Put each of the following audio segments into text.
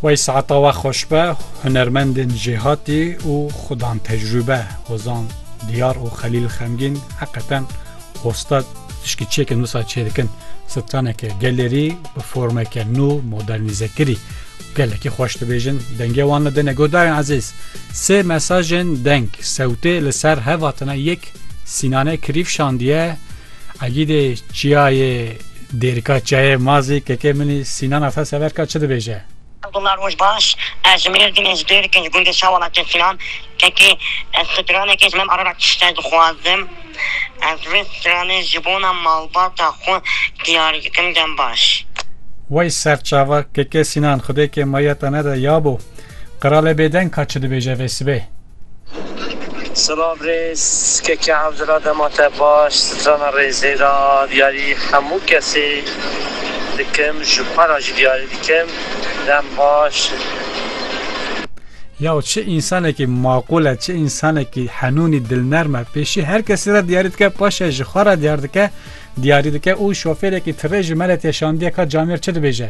Wey saeta we xweş be hunermendên jêhatî û xudan tecrûbe hozan diyar û xelîl xemgîn heqeten hostat tişkî çêkin wisa çê dikin straneke gelerî bi formeke nû modernîzekirî gelekî xweş dibêjin dengê wan li dine godarên ezîz sê mesajên deng sewtê li ser hevatine yek sînane kirîf şandiye Egîdê çiyayê Dêrika Çiyayê Mazî kekê min î Sînan Ata Severka çi dibêje? Abdullah Rojbaş, Ez ji Mêrdîn im, ji Dêrikê, ji gundê Şa Welatê Sînan kekê ez stranekê ji me bi Arabekî şite dixwazim. Ez vê stranê ji bona malbata xwe diyar dikim dem baş. Wey serçava kekê Sînan xwedêkê mayî te nede ya bo. Qiralê bêdeng ka çi dibêje vê sibê? Silav rêz keke hevdira dema te baş strana rêzê ra diyarî hemû kesê dikim ji xwe ra jî diyarî dikim dem baş. Yaw çi însanekî maqûl e çi însanekî henûnî dilnerm e pêşî her kesî ra diyarî dike paşê ji xwe ra diyar dike diyarî dike û şofêrekî tirê ji me re tê şandiye ka camêr çi dibêje.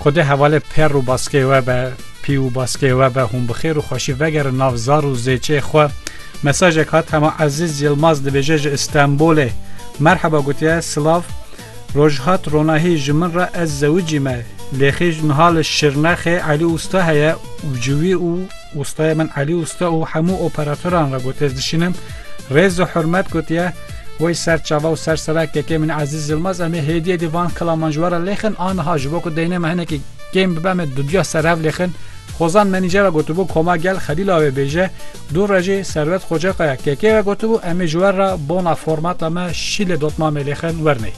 Xwedê hevalê perr û baskê we be, pî û baskê we be, hûn bi xêr û xweşî vegerin nav zar û zêçê xwe. Mesajek hat hema Ezîz Yilmaz dibêje ji Îstenbolê. Merheba gotiye silav. Roj hat ronahî ji min re ez zewicî me. Lêxî niha li Şirnexê Elî Usta heye û ji wî û Wustaya min Elî Wusta û hemû operatoran re gotez dişînim. Rêz û hurmet gotiye, Wey ser çava û ser sera kekê min Ezîz Yilmaz em ê hêdiyê dî van kilaman ji we re lêxin a niha ji bo ku deynê me hinekî kêm bibe em ê duduya ser hev lêxin. Xozan menîjera gotibû Koma Gel Xelîla wê bêje. Dû re jî Serwet Xocekaya kekê re gotibû em ê ji we re bona formata me şîlê dotmamê lêxin wernê.